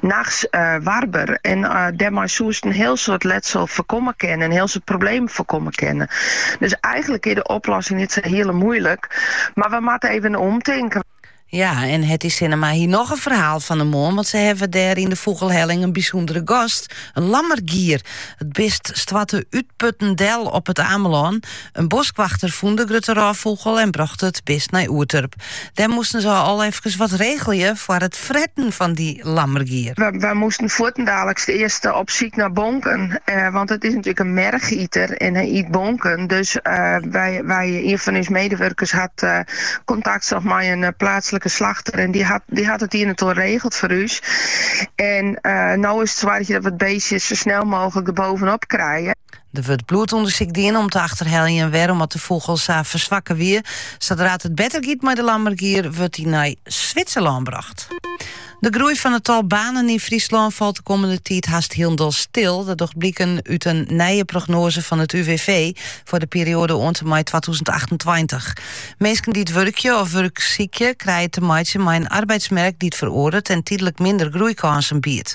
Nachts warber en dêrmei soest in hiel soad letsel foarkomme kinne, in hiel soad problemen foarkomme kinne. Dus eigenlik is de oplossing net sa hiele moeilik, mar we moatte even omtinken. Ja, en Hedzer Sinnema hie noch in ferhaal fan 'e moarn, want se hawwe dêr yn de Fûgelhelling in bysûndere gast, in lammergier. It bist stoarte útputten del op it Amelân. In boskwachter fûn de grutte rôffûgel en brocht it bist nei Oerturp. Dêr moasten se al efkes wat regelje foar it fretten fan dy lammergier. Wy moasten fuortendaliks earst op syk nei bonken, want it is natuerlik in merchiter en hy yt bonken. Dus wy, ien fan ús medewurkers hat kontakt socht mei in pleatslike slachter en dy hat it ien en oar regele foar ús. En no is it soargje dat we it beestje sa snel mooglik der boppe-op krije. Der wurdt bloedûndersyk dien om te achterheljen wêrom't de fûgel sa ferswakke wie. Sadra't it better giet mei de lammergier, wurdt dy nei Switserlân brocht. De groei fan it tal banen yn Fryslân falt de kommende tiid hast hielendal stil. Dat docht bliken út in nije prognoaze fan it UWV foar de perioade oant en mei twatûzen achtentweintich. Minsken dy't wurkje of wurk sykje, krije te meitsjen mei in arbeidsmerk dy't feroardert en tydlik minder groeikânsen biedt.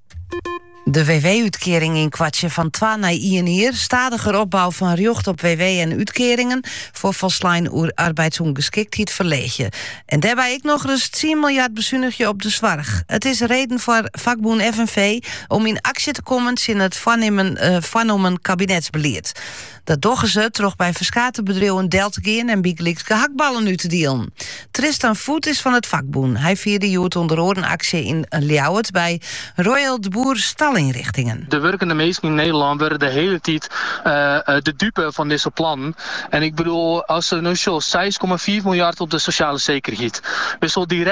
De WW-útkearing ynkoartsje fan twa nei ien jier, stadiger opbou fan rjocht op WW en útkearingen foar folslein arbeidsûngeskiktheid ferleegje en dêrby ek nochris tsien miljard besunigje op de soarch. It is reden foar fakbûn FNV om yn aksje te kommen tsjin it foarnommen kabinetsbelied. Dat dogge se troch by ferskate bedriuwen del te gean en bygelyks gehaktballen út te dielen. Tristan Voet is fan it fakbûn. Hy fierde hjoed ûnder oaren aksje yn Ljouwert by Royal de Boer Stalinrichtingen. De wurkende minsken yn Nederlân wurde de hiele tiid de dupe fan dizze plannen. En ik bedoel, asto no sjochst seis komma fiif miljard op de sosjale sekerheid, wist wol direkt.